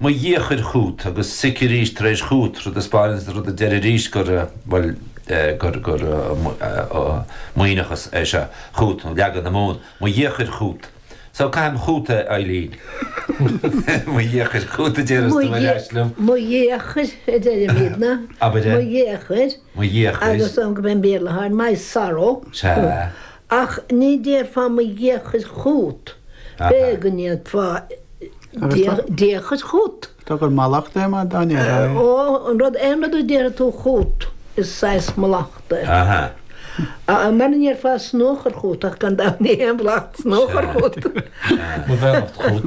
Mo dhiachair chút agus sic arís tar éis chút rud a spáin agus rud a deir arís gur, bhuel, gur, gur Muimhneachas é seo, chút, nó leagan na Mumhan. Mo dhiachair chút. So caithim chút é Eileen. Mo dhiachair chút a deireas tú ar ais liom. Mo dhiachair a deirimidne. Abair é. Mo dhiachair. Mo dhiachair. Agus an cén Béarla atá air My sorrow. Sea. Ach ní déarfá mo dhiachair chút. B'é go ndéarfá diachair chút. Tá gur mallachta é mar dán ar aghaidh. Ó, an rud, aon rud a déarfaidh tú chút, is saghas mallachta é. Aha. Mara ndéarfá snóchar chút, ach gan dabht ní haon mhallacht snóchar chút. Mo bheannacht chút.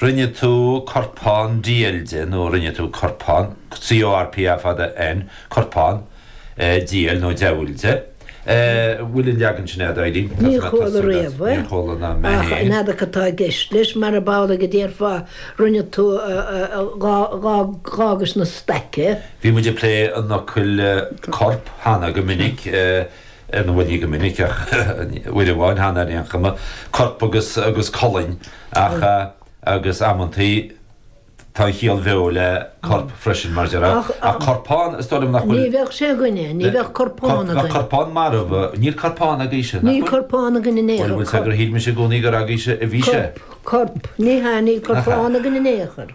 Rinne tú corpán diail de nó rinne tú corpán, C O R P A fada N, corpán, diail nó deabhail de. Bhfuil an leagan sin a'd, Eileen? Ní chuala riamh é. Níor chuala ná mé féin. Ach n'fheadar cad atá i gceist leis, marab amhlaidh go ndéarfá, rinne tú d'fhágais ina staic é. Bhí muid ag plé an fhocail corp cheana go minic. ar ndóigh ní go minic ach uair amháin, cheana ar aon chuma, corp agus colainn ach agus amantaí tá an chiall bheo le corp freisin mar déarfá ach corpán is dóigh liom nach bhfuil, ní bheadh sé againne, ní bheadh corpán againn, bheadh corpán marbh, níl corpán agaibhse, níl corpán againn in aon chor, bhfuil fhios a'd gur shíl mise i gcónaí gur agaibhse a bhí sé, corp, ní hea níl corpán againn in aon chor.